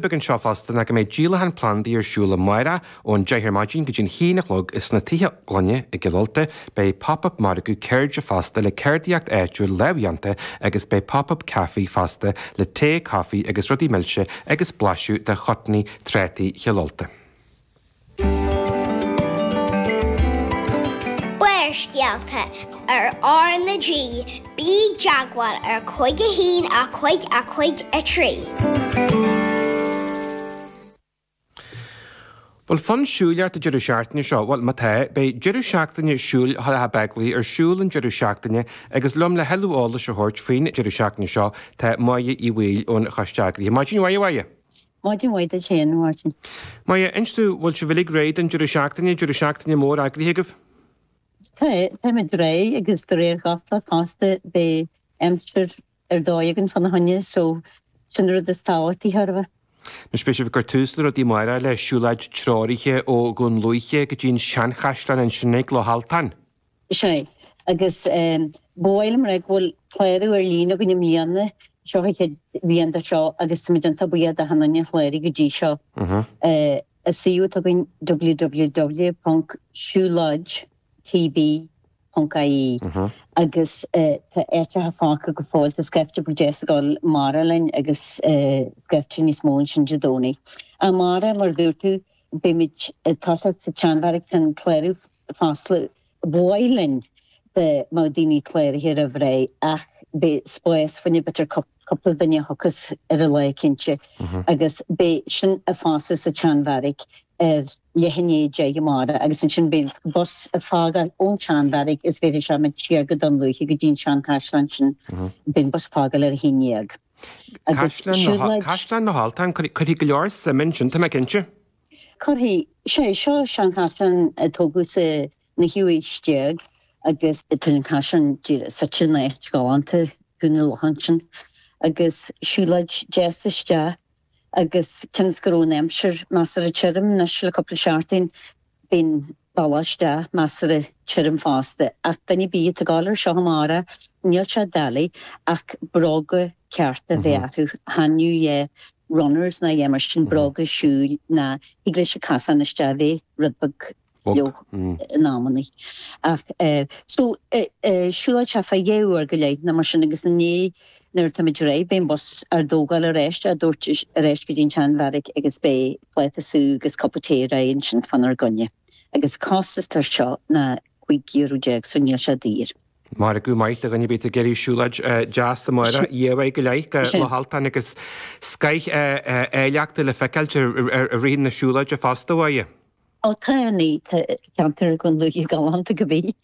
beag anseo fosta ná go mbeidh díolachán plandaí ar siúl amárach ón deich ar maidin go dtí an haon a chlog ins na tithe gloine i gCill Ulta beidh Pop Up Margadh Ceirde fosta le ceardaíocht áitiúil lámhdhéanta agus beidh Pop Up Café fosta le tae, coffee agus rudaí milse agus blaiseadh de chutney, trátaí Chill Ulta. Barrscéalta ar RnaG, bí i dteagmháil ar cúig a haon a cúig a cúig a trí. Bhfuil fonn siúil ort an deireadh seachtaine seo? Bhuel, má tá, beidh Deireadh Seachtaine Siúil Thulach Bheaglaoich ar siúl an deireadh seachtaine agus liom le tuilleadh eolais a thabhairt faoin deireadh seachtaine seo tá Máire Uí Bhaoill ón Choiste Eagraithe. Maidin mhaith, a Mháire! Maidin mhaith duit féin, a Mháirtín. Máire, inis dúinn, bhfuil sibh uilig réidh don deireadh seachtaine, deireadh seachtaine mór eagraithe agaibh? Tá, táimid réidh agus de réir gach cosúlachta beidh aimsir ar dóigh againn fá na choinne so sin an rud is tábhachtaí thar a bheith. Anois beidh sibh ag cur tús le rudaí amárach le siúlóid treoraithe ó Dhún Lúiche go dtí an seanchaisleán ansin ag Loch Alltáin. Is ea. Agus ba mhaith liom a rá go bhfuil clárú ar líne againn i mbliana, seo an chéad bhliain dó seo agus táimid iontach buíoch de Hannah Ní Chléirigh go dtí seo. An suíomh atá againn www.siuloidtb.ie agus tá áiteacha fágtha go fóill, tá scaifte beag deas ag dul amárach linn agus scaifte níos mó ansin Dé Domhnaigh. Amárach, mar a dúirt tú, Beimid ag toiseacht sa tseanbheairic tá an clárú foscailte. B'mhaith linn dá mbeadh daoine cláraithe roimh ré ach beidh spás fá choinne b'fhéidir cúpla duine a thiocfas ar an lá cinnte agus beidh sin ag foscailt sa tseanbheairic ar leath i ndiaidh a deich amárach agus ansin beidh an bus ag fágáil ón tseanbheairic is bhéarfaidh sé muid siar go Dún Lúiche go dtí an seanchaisleán ansin. Beidh an bus ag fágáil ar a haon déag. Caisleán na hAltan, cuirfidh go leor suim ansin, tá mé cinnte. Cuirfidh. Is é seo seanchaisleán a tógadh sa naoú haois déag agus tá an caisleán suite in áit ghalánta ag ceann an locha ansin agus siúlóid deas isteach. agus cionn 's go raibh an aimsir measartha tirim, anois le cúpla seachtain, beidh an bealach isteach measartha tirim fosta. Ach duine ar bith atá ag gabháil ar seo amárach, níl sé doiligh ach bróga cearta bheith orthu, chan fhiú é runners ná a dhath mar sin, bróga siúil nó thig leis an casán isteach bheith rud beag. leo in amannaí. Ach so siúlóid sé fá dhá uair go leith nó mar sin agus inné nuair atáimid réidh beidh an bus ár dtógáil ar ais díreach ar ais go dtí an tseanbheairic agus beidh pláta sú agus cupa tae réidh ansin fánár gcoinne. Agus costas air seo ná cúig euro déag so níl sé daor. Máire, Go maith do dhuine ar bith ag iarraidh siúlóid deas amuigh ar dhá uair go leith go Loch Altáin agus scoith áilleachta le feiceáilt i rith na siúlóide fosta uaidh. Ó tá an ceantar Dhún Lúiche galánta cibith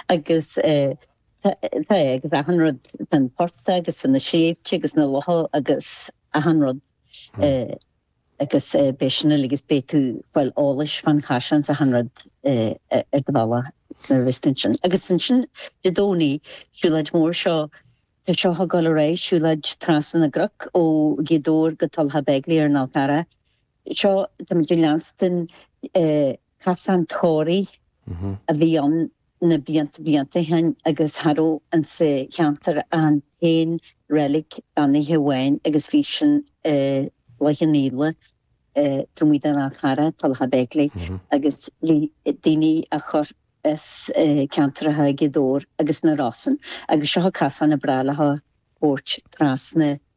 agus tá é agus achan rud, tá an portach agus na sléibhte agus na locha agus achan rud agus beidh sin uilig agus beidh tú fáil eolais fán chaisleán 's achan rud ar do bhealach nuair a bheas tú ansin. Agus ansin Dé Domhnaigh, siúlóid mhór seo, tá seo ag gabháil ar aghaidh, siúlóid trasna na gcnoc ó Ghaoth Dobhair go Tulacha Beigile ar an Fhál Carrach. Seo táimid ag leanstan casán tórraimh a bhí ann na blianta blianta ó shin agus cha raibh insa cheantar ach an t-aon reilig beannaithe amháin agus bhí sin i gCloich Cheann Fhaola taobh amuigh den Fhál Carrach, Tulacha Beigile agus bhí daoine á gcur as ceantar Ghaoth Dobhair agus na Rosann agus seo casán a breá leo thabhairt trasna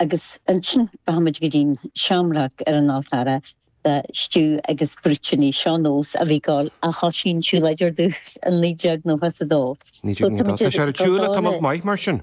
Agus ansin rachaimid go dtí'n Shamrock ar an Fhál Carrach le stew agus brúitíní. Seo nós a bhí ag dul ó thoisigh an tsiúlóid ar dtús i naoi déag nócha is a dó. Naoi déag, naoi dó. Tá sé ar siúl le tamalt maith mar sin.